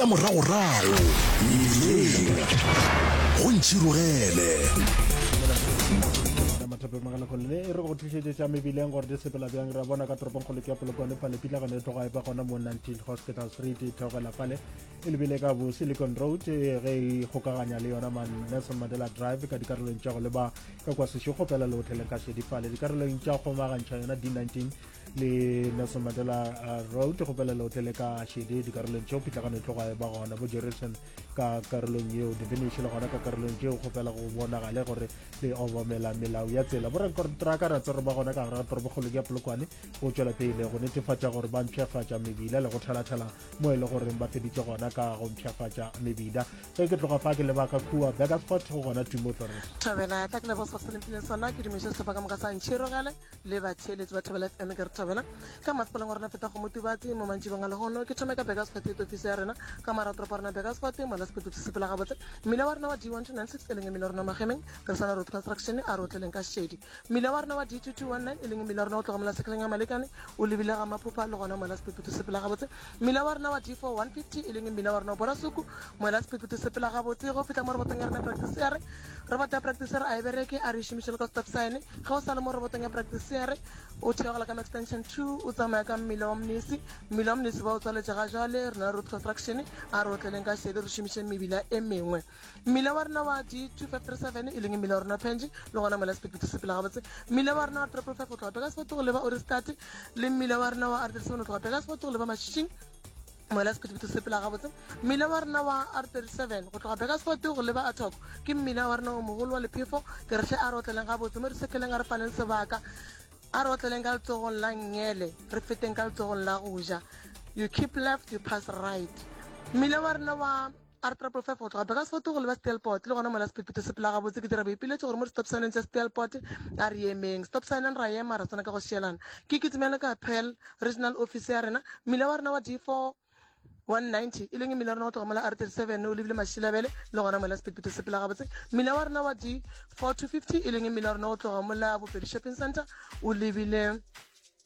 tša moragorago mebileng go ntšhirogele mathapemaganakolone e re go tlišetše tša mebileng gore di sepela bjang ra bona ka toropong kgolo ke polokwane fale pitlagano e tloga e ba gona mo 19 hospital street e theogela fale e lebile ka bo silicon road e ge e kgokaganya le yona man nelson mandela drive ka dikarolong tša go leba ka kwa sešogo fela le hoteleng ka šedi fale dikarolong tša kgomagantšha yona d19 le nelson mandela uh, road go pela leotle le ka shede dikarolong tšeo pitlagano e tloga e ba gona bo jerusalem ka karolong yeo definition le gona ka karolong tšeo go pela go bonagale gore le obamela melao ya tsela borakontraka ra tsere ba gona ka gare ga torobokgolo ya polokwane go tšwela pele go netefatša gore ba mpšhafatša mebila le go thalathela mo e le goreng ba feditše gona ka go mpšhafatša mebila ge ke tloga fa ke lebaka kua bakersfort go gona tumo tlore thabela tla ke lebosa se lempile sona ke dumiša sehlopha ka moka sa ntšhirogele le batheeletsi ba thobela fm ke re thobela ka masepaleng wa rona feta go motubatsi mo mantšibong a lehono ke thome ka begasfort e tofiso ya rena ka maratoropo a rona begasfort mola sepeto se sepela gabotse mmila wa rena wa d one two nine six e leng mmila wa rona magemeng re sana road construction a re o tleleng ka šedi mmila wa rena wa d two two one nine e leng mmila wa rona o tlogamela sekgeleng ya malekane o lebile ga maphopha le gona mola sepeto se sepela gabotse Mmila wa rena wa D4 150 e leng mmila wa rena wa borasuku moela sephephetho se pela gabotse go fihla mo robotong ya rena practiceere roboto ya practiceere a e bereke a re e šomišele ka stop sign ge o sa le mo robotong ya practiceere o theogela ka extension 2 o tsamaya ka mmila wa mnisi mmila wa mnisi ba o tswaletše ga jale rena road construction a re otleleng ka šedi re šomišeng mebila e mengwe mmila wa rena wa g2537 e leng mmila wa rena wa penji le gona mola sepekete se pela gabotse mmila wa rena wa triple five go tloga peka sefoto go leba orestate le mmila wa rena wa r37 go tloga peka sefoto go leba mašhišing mola sephetephete se pela gabotse mmila wa rena wa r 37 go tloga beka sefote go leba atoko ke mmila wa rena o mogolo wa lephefo ke retlhe a re otleleng gabotse mo re sekeleng a re faneng sebaka a re otleleng ka letsogong la ngele re feteng ka letsogong la go ja you keep left you pass right mmila wa rena wa A re Trapo five go tloga Bekasfort go leba Steelport, le gona mola sephethephethe se phela gabotse, ke dira boipiletšo gore mo di-stop sign-eng tša Steelport a re emeng. Stop sign-eng ra ema, ra swana ka go šielana. Ke kitimele ka Pearl, regional office ya rena. Mmila wa rena wa D four 190 e leng mmila wa rena go tloga mola R thirty seven o lebile Mašilabele, le gona mola sephethephethe se phela gabotse. Mmila wa rena wa D four two fifty e leng mmila wa rena go tloga mola Bopedi Shopping Centre o lebile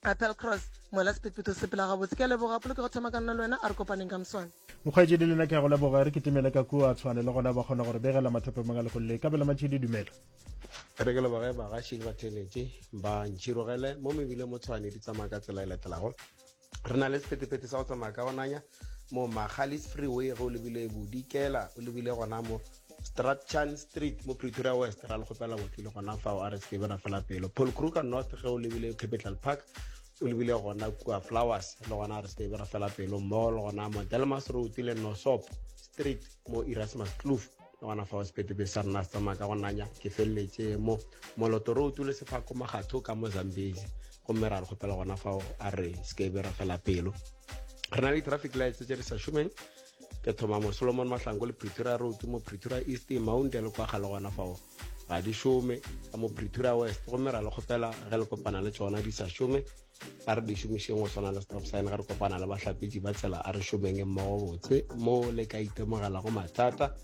Applecross, mola sephetphetho se phela gabotse. Ke a leboga, polo ke go thoma ka nna le wena, a re kopaneng ka moswane. Mokgweetši le lena ke a go leboga, re kitimele ka kua, Tshwane le gona ba kgona gore begela mathope mang a lekgong le. Kabelo Matšhidi, dumela. Re ke leboge bagaši le batheeletše ba ntšhirogele mo mebile mo Tshwane di tsamaya ka tsela e latelago. Re na le sephetepete sa go tsamaya ka go nanya, mo Margalis Freeway ge o lebile Bodikela o lebile gona mo Strachan Street mo Pretoria West ra le kgopela botlile gona fa o RSK bera fela pelo Paul Kruger North ge o lebile Capital Park o lebile gona kua Flowers le gona RSK bera fela pelo mall gona mo Delmas Road le Nosop Street mo Erasmus Kloof gona fao sepetebe sa rena se tsamaya ka go nanya ke feleletše mo moloto re utule sefako magatho ka mo zambezi gomme ra re kgopela gona fao a re sekebe ra fela pelo re na le traffic lights tse di sa šomeng ke thoma mo solomon mahlango le pretoria road mo pretoria east mounte le kwaga le gona fao ga di šome ka mo pretoria west gomme ra le kgopela ge le kopana le tsona di sa šome a re di šomišeng go tshwana le stop sign ga re kopana le bahlapetši ba tsela a re šomeng e mmogo botse mo le ka itemogelago mathata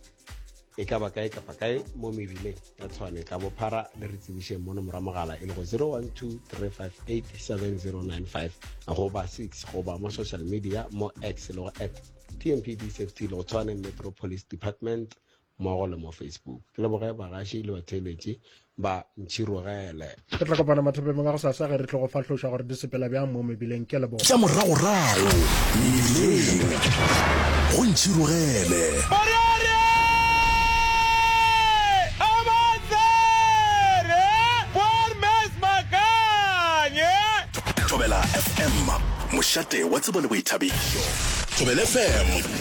e ka ba kae kapa kae mo mebileng ya tshwane ka bophara le re tsebišeng mono mora mogala e le go 0123587095 goba 6 goba mo social media mo x le go at tmpd safety le go tshwane metropolis department mmogo le mo Facebook. Ke leboge bagaši le batheeletši ba ntšhirogele. Re tla kopana mathapemeng a go sasa ge re tlo go fahloša gore di sepela bjang mo mebileng. Ke a leboga. Tša moragorago mebileng go ntšhirogele. Thobela FM, mošate wa tsebo le boithabišo. Thobela FM.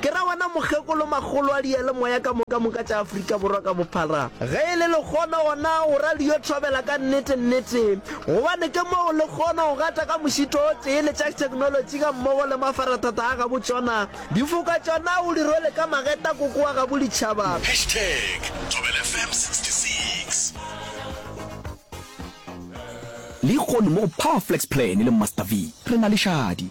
Ke ra wena mokgekolo makgolo a diyalemoya ka moka moka tša Afrika Borwa ka bophara. Ge e le lekgono gona o ra le yo thobela ka nnete nnete gobane ke mo o lekgono go gata ka mošito o tee le tša theknolotši ga mmogo le mafarathata a gabo tšona difoka tšona o di rwele ka mageta koko wa gabo ditšhaba. Hashtag Thobela FM 66. Lehono mo go Power Flex Plan le Master V re na le šadi.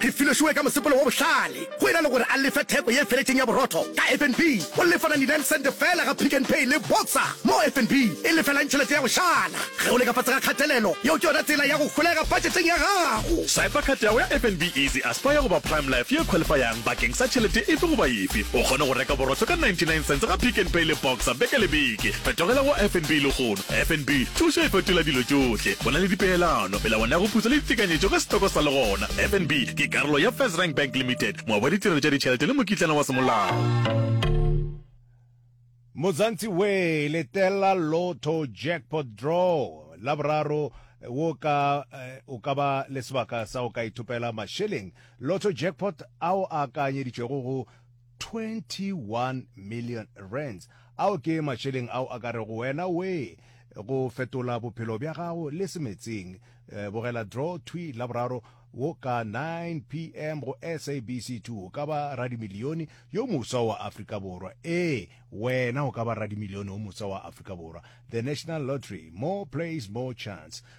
Re filošoe ka mosepelo wo bohlale. Go e na le gore a lefe theko ye feletšeng ya borotho ka FNB, o lefa 99 sente feela ga Pick n Pay le Boxer, moo FNB e lefelang tšhelete ya go šala. Ge o le ka fase ga kgatelelo, yeo ke yona tsela ya go holega patšheteng ya gago. Swiper card ya gago ya FNB Easy Aspire goba Prime Life ye khwalifayang bakeng sa tšhelete efe goba efe. O kgone go reka borotho ka 99 sente ga Pick n Pay le Boxer beke le beke. Fetogela go FNB lehono. FNB, Thušo e fetola dilo tšohle. Go na le dipeelano, melawana ya go putsa le ditekanyetšo ge setoko sa le gona. FNB ke karolo ya FirstRand Bank Limited, moabi wa ditirelo tša ditšhelete le mokitlana wa semolao. Muzansi Way, Letela Lotto Jackpot Draw, Laboraro, wo ka o ka ba le sebaka sa go ka ithopela mašeleng, Lotto Jackpot, ao a akaanyeditšwego go 21 million rands, ao ke matšeleng ao a ka rego wena wee go fetola bophelo bja gago le semetsing. Bogela draw thwi Laboraro wo ka 9 pm go SABC 2 o ka ba radimilione yo mofsa wa Afrika Borwa. Ee, wena o ka ba radimilione wo mofsa wa Afrika Borwa. The National Lottery, more plays, more chance.